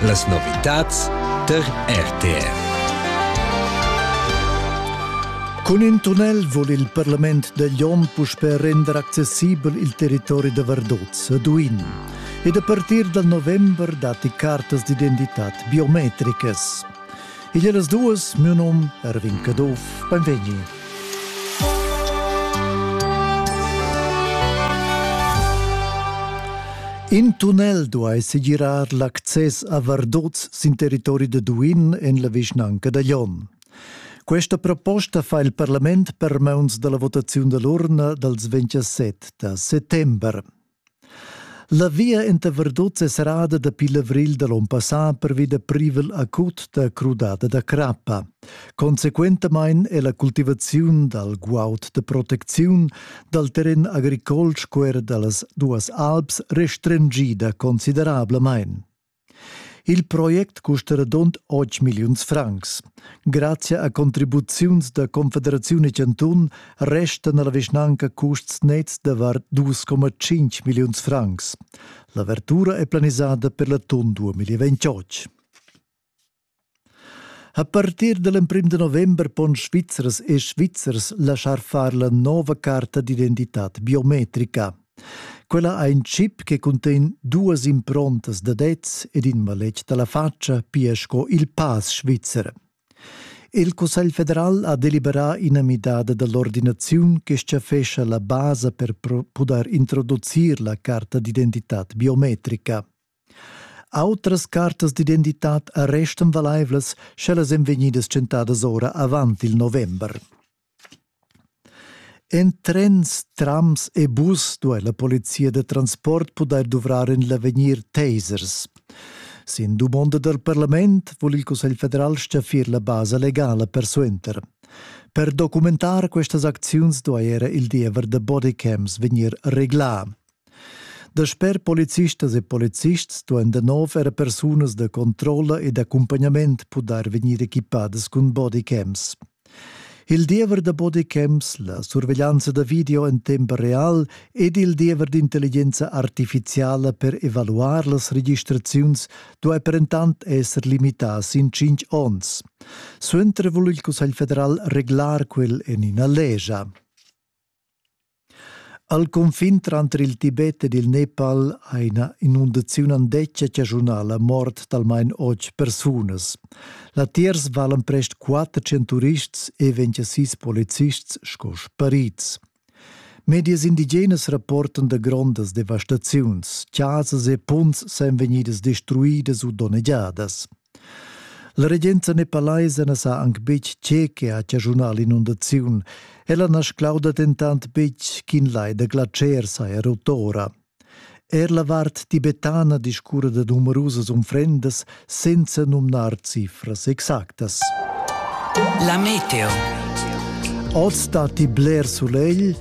Las novitads tar RTV. Cun in tunnel vul il parlament da Glion puspè render accessibel il territori da Vardozza a Duin. Ed a partir dal november datti cartas d'identitad biometricas. Igl e las duas, miu num Erwin Caduff, benvegni. In tunnel duai segirar l'access a Vardoz sin territori da Duin en la vischnanca da Glion. Questa proposta fa il parlament per mauns dalla votaziun dall'urna dals 27 da settember. La via inta Verduz es serrada dapi l'avril da l'on passà pervi da privel acut da crudada da crappa. Consequentamaing è la cultivaziun dal guaud da protecziun dal terren agricol sco er da las duas alps restringida considerablamain. Il project custa radund otg milliuns francs. Grazia a contribuziuns da Confederaziun e Cantun restan alla vischnanca custs nets davart 2,5 milliuns francs. L'avertura è planisada per l'atun 2028. A partir da l'emprim da november pon Svizzers e Svizzers laschar far la nova carta d'identitad biometrica. Quella ha in chip che cuntegn duas improntas da dets ed in maletg da la faccia, pia sco il pass svizzer. Il Cussegl federal ha deliberà ina midada da l'ordinaziun che schaffescha la basa per pudair introducir la carta d'identitad biometrica. Autras cartas d'identitad restan valaivlas, sch'ellas èn vegnidas tschentadas ora avant il november. En trens, trams e bus duai la polizia da transport pudair duvrar en l'avegnir tasers. Sin dumonda dal parlament vul il Cussegl federal staffir la basa legala persuenter. Per documentar questas acziuns duai era il diever da bodycams vegnir reglà. Dasper policistas e policists duain da nov era persunas da controlla ed accumpagnament pudair vegnir equipadas cun bodycams. Il diever da bodycams, la surveglianza da video en temp real ed il diever d'intelligenza artifiziala per evaluar las registraziuns duai perentant esser limità sin cinq onns. Suenter vul il Cussegl federal reglar quel en ina legia. Al cunfin tranter il Tibet ed il Nepal ha ina inundaziun andetga chaschunà la mort d'almain otg persunas. Latiers valan prest quatter centurists e vegn sis policists sco sparids. Medias indigenas rapportan da grondas devastaziuns. Chasas e punts san vegnidas destruidas u donnegiadas. La regenza nepalaisa na sa anc betg tge che ha chaschunà l'inundaziun. Ella na sclauda dentant betg ch'in lai da glatscher saja rot ora. Er la vart tibetana discurra da numerusas unfrendas senza numnar cifras exactas. La meteo. Oz datti bler sulegl,